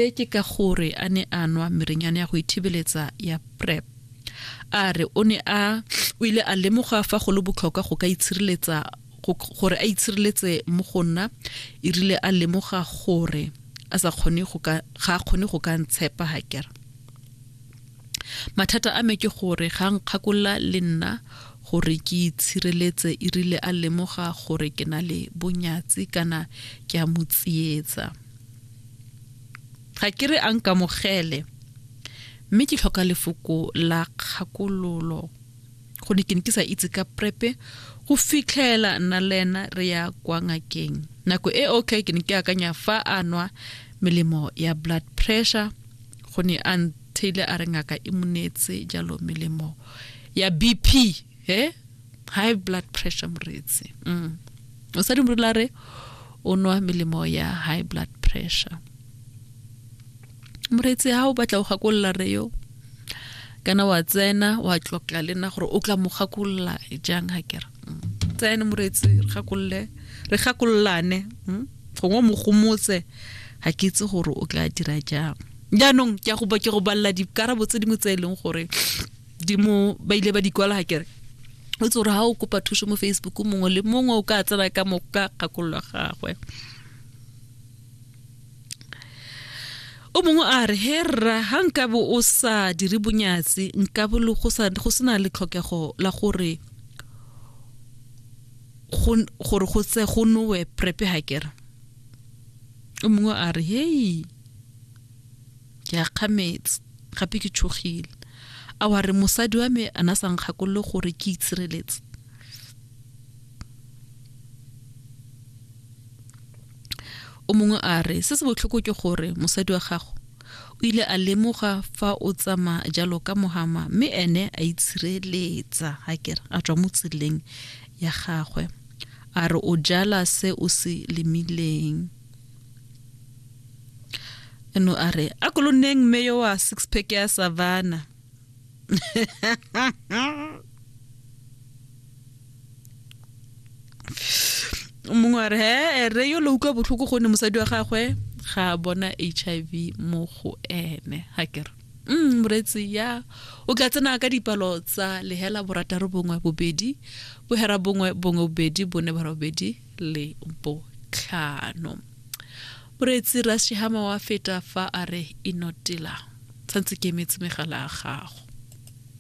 Se ke ka gore a ne a nwa merenyane ya go ithibeletsa ya PrEP. A re o ne a o ile a lemoga fa go le botlhokwa go ka itshireletsa gore a itshireletse mo go nna e rile a lemoga gore a sa kgone go ka ga kgone go ka ntshepa ha kere mathata a me ke gore ga nkgakolla le nna gore ke itshireletse e rile a lemoga gore ke na le bonyatsi kana ke a mo tsietsa ga ke re a nkamogele mme ke tlhoka lefoko la kgakololo go ne ke ne ke sa itse ka prepe go fitlhela nna le ena re ya kwa ngakeng nako e okay ke ne ke akanya fa a nwa melemo ya blood pressure go ne a ntheile a re ngaka e monetse jalo melemo ya bp he high blood pressure moreetsi mm. o sa dimolola re o nwa melemo ya high blood pressure moreetsi ha o batla o gakolola re yo kana wa tsena wa tlokla le nna gore o tla mo gakolola jang ga kere mm. tsene moreetsi re gakolole re gakololane mm. gongwe mo gomotse ga ke itse gore o tla dira jang jaanong ke go ba ke go balela dikarabo tse dingwe tse e leng gore di mo ba ile ba di kwala hakere o tse gore ga o kopa thuso mo facebook mongwe le mongwe o ka tsena ka mo ka kgakololo gagwe o mongwe a re he rra ga nkabo o sa dire bonyatsi nkabo le go sena le tlhokego la gore gore go tse go nowe prepe hakere o mongwe a re hei ke a kgametse gape ke tshogile a wa re mosadi wa me a na sa nkgakolole gore ke itshireletse o mongwe a re se se botlhoko ke gore mosadi wa gago o ile a lemoga fa o tsama jalo ka mohama mme ene a itshireletsa ga kere a tswa mo tseleng ya gagwe a re o jala se o se lemileng no a re a ko lo nneng mme yo wa six pack ya savana mongwe a re he re yo lo utlwa botlhoko gonne mosadi wa gagwe ga a bona h i v mo go ene ga kere mm moretsi ya o ka tsena ka dipalo tsa lehela borataro bongwe bobedi bohera bongwe bongwe bobedi bone bara bobedi le botlhano moreetsi rasihama wa feta fa a re inotela santse ke emetse megala ya gago